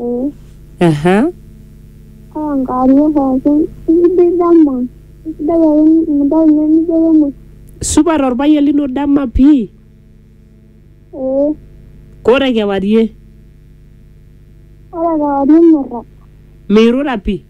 Ee. Aha. Kaa enkewarie pookin. Isidai dama. Isidai ake intae ninye nijo kemuoi. Supat orpayian lino dama pii. Ee. Kore kewarie. Ore kewarie mirrag. Mirura pii.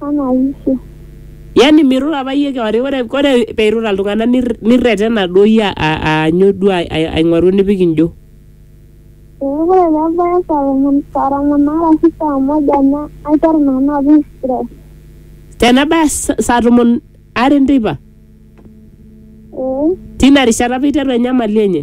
Anayishe. Yani mirura apa iyie kewarie ore ore peirura iltung'anak nir- nirretena duo iyie a- a- aanyu duo ai- ai- aing'oru enipik injo Ee ore pebaya saa tomon saa tomon aare ashu saa moja na aiteru nanu apik stress. tenebaya sa- saa tomon are enteipa Ee tina rishata apa iteru enyamali enye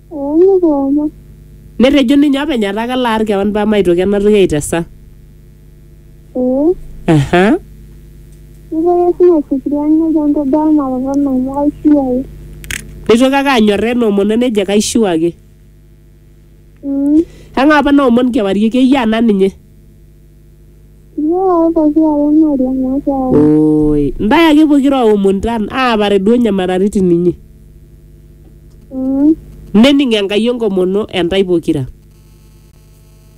Oong'okomo. Netejo ninye openy etaa kalo aar kewan paa maitoki ena toki aitesa. Ee. Aha. Neitoki Yesu ninye aifikiria nejo entodua emuatata ino amu kaishiu ake. Neitoki ake anyorraa ena omono nejo kaishiu ake. Mm. Kang'ae apa naomon kewarie? Keyiaa naa ninye. Iyioo pokira are ing'oriong' makeon. Oi, ntae ake pokira aomon tan aapare duo nyamalaritin inyi. Mm. Nening Enkai enkomono entae pokira.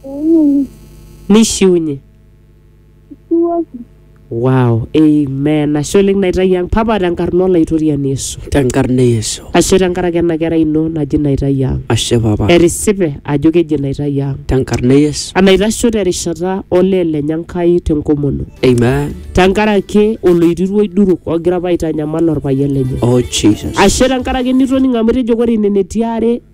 Ening. Nishiunye. Ishiuoki. Wow, amen. Ashe oleng naitayu ang. Papa tenkarna olaitoriani Yesu. Tenkarna e Yesu. Ashe tenkaraki ena kerai ino naji naitayu ang. Ashe papa. Etisipe ajo keji naitayu ang. Tenkarna e Yesu. Enaitasho terishata olee lenye Enkai tenkomono. Amen. Tenkaraki oloirirua oiduruk ogira apa aitanyamal orpayian lenye. Oh Jesus. Ashe tenkaraki nitoning'o amu etejo ore nene tiare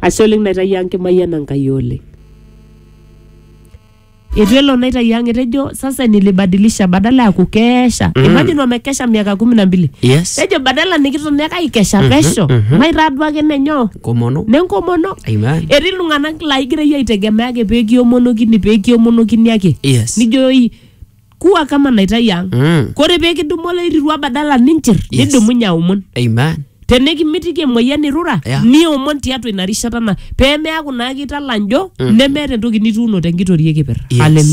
ashe oleng naitayio ang kimayiana Enkai oleng etu elo naitayio ang etejo sasa nilibadilisha badala ya kukesha mm. imagine wamekesha miaka kumi na mbili yes tejo badala nikiton ake aikesha pesho maitaa duo ake nenyoo komono nenkomono amen etii iltung'anak laigira iyie aitegemea ake pekiomonokini pekiomonokini ake yes nijoyoi kuwa kama naitai ang Mm. kore pee kidumu olairirua badala ninchir Yes. nidumunye aomon Amen. tenikimitiki emoyian irura Yeah. niomon tiatua ina rishata na pee meaku naa kitala njo nemeeta entoki nituuno tenkitoria ekipir Yes. Hallelujah.